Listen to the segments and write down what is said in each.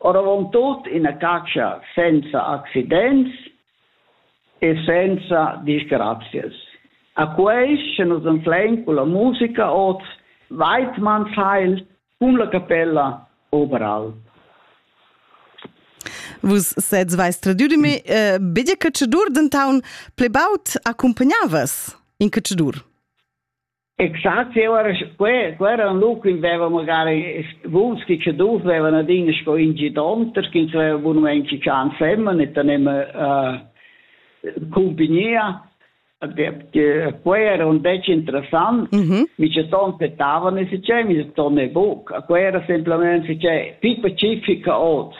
Oravontut ina catscha senza accidents e senza disgrazias. A quei sche nus anflein culla musica oz Weidmannsheil cun la capella Oberalp. Vus sez veis tradiu de me, eh, begia catschadur, denton pli baud accumpagnavas in catschadur. Exakt, ja, aber quel, quella un loc in veva magari vuns chi che dus vevan adin sco in gidonter, chi aveva bunament chi chan femmen e tanem compagnia. Quei era un dec interessant, mm -hmm. mi ce ton petavano e si c'è, mi ce ton e buc. Quei era semplicemente si c'è, più pacifica od.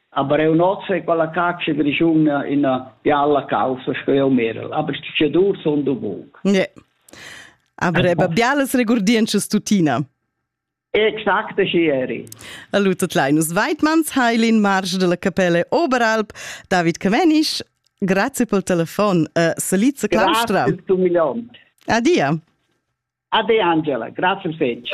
Aber eu nozze quella caccia grigiuna in bialla causa sco io merel, aber ci dur son du buc. Yeah. Avreba bialas regurdientschas tuttina. Exact aschi eri. Allu tot Linus Weidmanns, Heilin Marsch della Capelle Oberalp, David Camenisch, grazie pel telefon. Uh, Saliza Claustra. Grazie, tu milion. Adia. Ade Angela, grazie fetch.